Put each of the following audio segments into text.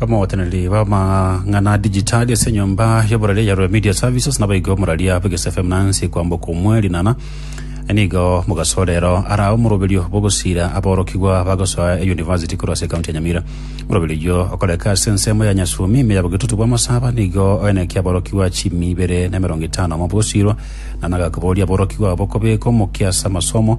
Abagoteneneri b'amang'ana a digitali ase enyomba y'oborori ya Rue Media Services nabaigwe omoraria bwa Gese FM Nancy kwamboka omwe rinana nigo mogasorero ara omoroberio bw'ogosira aborokigwa bagosoa eyunivasiti korwa ase ekaunti ya Nyamira. Omoroberio oyio okoreka ase ensemo ya Nyasumi ime ya bogetutu bwa Masaba nigo oenekia aborokigwa chimi ibere na emerongo etano amo bogosirwa na nagakoboria aborokigwa abo kobeka omokia ase amasomo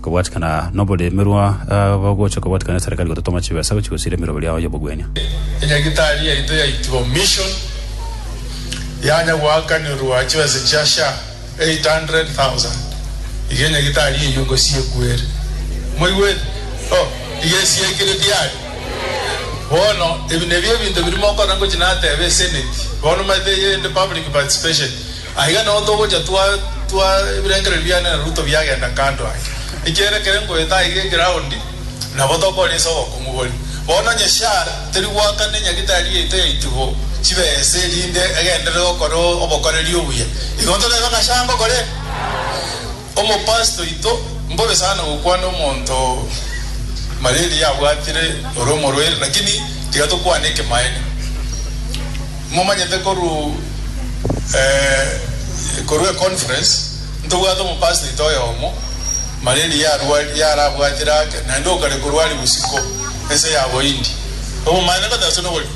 Kobwatikana noboremerwa, abagocha kobwatikana neserikari gototoma chibesa gochia gosiira emerogo riao y'obogwenia. Enyagitari yaito yaitwa Mission yanya goakanirwa chibesa chia sha 800,000 iga enyagitari eyio ngosi ekwere. Moigwete? Oh, iga esiekire tiari? Bono, ebi nebio ebinto biria mokona ngochi nateba eseneti bono, omanyete, eyende public participation. Aiga nao togocha twa twa ebirengererio biane na Ruto biagenda kando ake. Ekiagera ekero nkoeta aiga egeroundi, nabo tokore inse obokong'u bore. Bono onye Shar teri goaka ne nyagitari yaito yaiti bo chibesa erinde egenderere gokora obokoreri obuya, igo ntoreebe ng'a Shar ngokora ere? Omopasiti oito mbobe sana gokwana omonto malaria abwatire ore omorwaire lakini tiga tokwane ekemaene momanyete koru eeh koru e conference ntobwate omopasiti oito oyomo malaria yarwari yarabwatire ake naende okare korwari bosiko ense ya bohindi obomaene ngotaso nobori.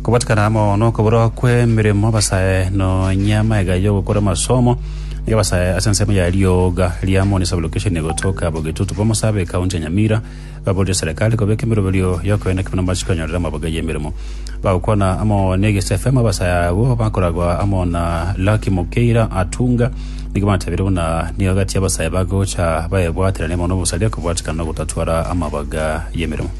Kobatikana amo nokoburwa kw'emeremo abasae nonya amaiga y'ogokora amasomo nigo abasae ase ensemo ya rioga ria Moni Sub-Location egotoka Bogetutu Bomosabe ekaunti ya Nyamira baburire serekari kobeka emeroberio y'okoenda kimo namache konyorera amaboga y'emeremo. Bagokwana amo n'Egesi FM abasae abwo bakoragwa amo na Lucky Mukeira Atunga nigo batebire buna nigo agati y'abasae bagocha baebwaterania mono obosaria kobatikana na ogotatwara amaboga y'emeremo.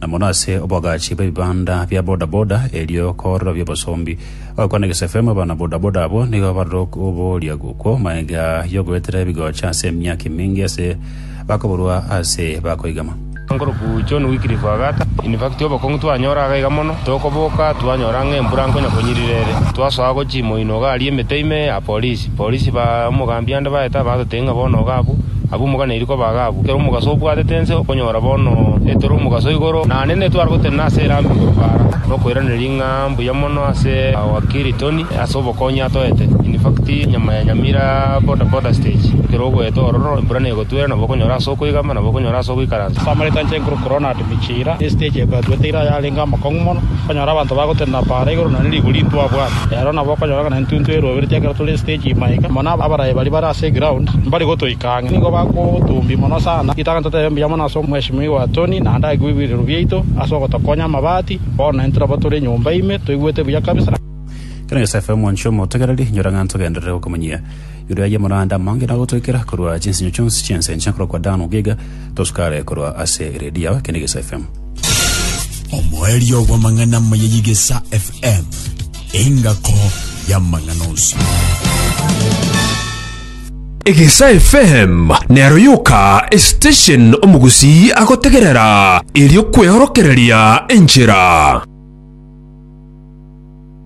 na mono ase oboagachi bw'ebibanda bia bodaboda erio koorora bi'obosombi. Agakwana egesefemu abana bodaboda abwo nigo barore ok- oboria gokwo magega y'ogoetera ebigocha ase emiaka eminge ase bakoburwa ase bakoigama. Nkoroku John Wycliffe agata, Infacti obokong'u twanyora iga iga mono, tokoboka twanyora ng'a embura nkonya konyirira ere. Twasoa gochia imoino iga aria emete ime ya polisi. Abapolisi ba omogambi ande baete abagotebi ng'a bono oga abwo, abwo moganeiri koba aga abwo. Ekero omogaso obwatete ense okonyora bono etore omogaso igoro, naende netware gotenena ase erambe igoro para, nokoiraneria ng'a mbuya mono ase wakiri Tony ase obokonyi atoete. In fact, nyama ya Nyamira boda boda stage, ekero ogoeta ororo, embura negotwera, nabo okonyora ase okoigama, nabo okonyora ase ogoikaransa. Samaritan Cheng Krupp Ronald. Emichiira ne esiteji eye bwatwete ira yarenge amakong'u mono, okonyora abanto bagotenena para igoro nonye rigori intwabwate. Ero nabo okonyora ng'a nintuntu eruobereti ekero tore esiteji ime iga, mono abarayi baria bare ase egraund mbari gotoika ang'e. Nigo bakotumbia mono sana. Ritang'ani totebe mbuya mono ase omweshimiwa Tony naende agekigwa ebirirwa biaito ase ogotokonya amabati. Bono naintwe nabo tore nyomba ime toigwete buya kabisa. Kera Yosefu, omwanchwa omotegereri, inyora ng'a ntogenderere gokomonyia. Igoro y'amoranda amange nagotoikera korwa chinsinyo chionsi chi'ense enchene korwa kwa Dan ogega, tosukare korwa ase eredio yao. Eke n'Egesa FM. Omoerio bw'amang'ana amaya y'Egesa FM, engako y'amang'ana onsi. Egesa FM nero yoka esiteshen omogusii agotegerera erio kweorokereria enchera.